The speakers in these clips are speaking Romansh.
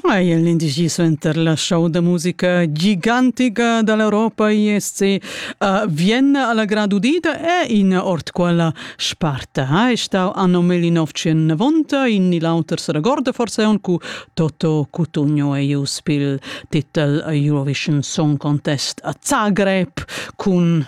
Ei è l'indigi suenter la show da musica gigantica dall'Europa ISC a Vienna alla grad udida è in ord quella sparta. È stau anno 1990 in il auter se regorda forse un cu Toto Cutugno e Ius pil titel Eurovision Song Contest a Zagreb cun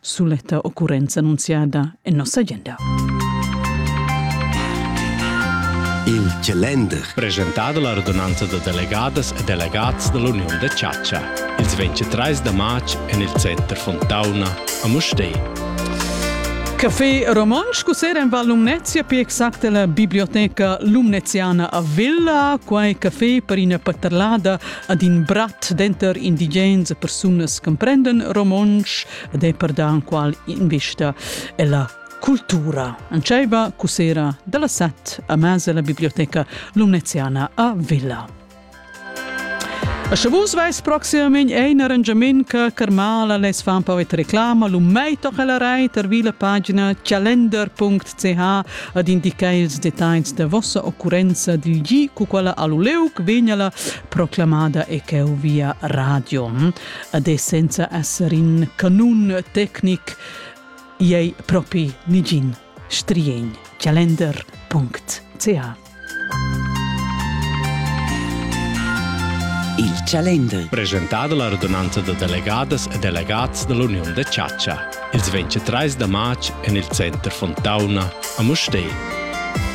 suletta occurrenza annunziada en nossa agenda. Il calender. Presentado la radunanza da delegadas e delegats dall'Uniun da chatscha. Ils 23 da marz en il center Fontauna a Mustei. Café romansch cusera in Val Lumnezia, più exact la biblioteca lumneziana a Villa. Quai café per ina paterlada ad in brat denter indigens e persunas comprenden romontsch ed è per da qual invista è la cultura. Anceva cusera dalla set a mesa la biblioteca Lumneziana a Villa. A Chavus vais proximamein ein arrangiament che Carmala les fan pau et reclama lu mei toch la rei per vila pagina calender.ch ha ad indicar ils dettagls da vossa occurrenza dil gi cu quella all'uleuc vegnala proclamada e cheu via radio. Ad essenza esser in canun tecnic ei propi nigin strien calender.ch Il calender. Presentà dalla radunanza da delegadas e delegats dall'Uniun da chatscha. Ils 23 da marz en il center Fontauna a Mustér.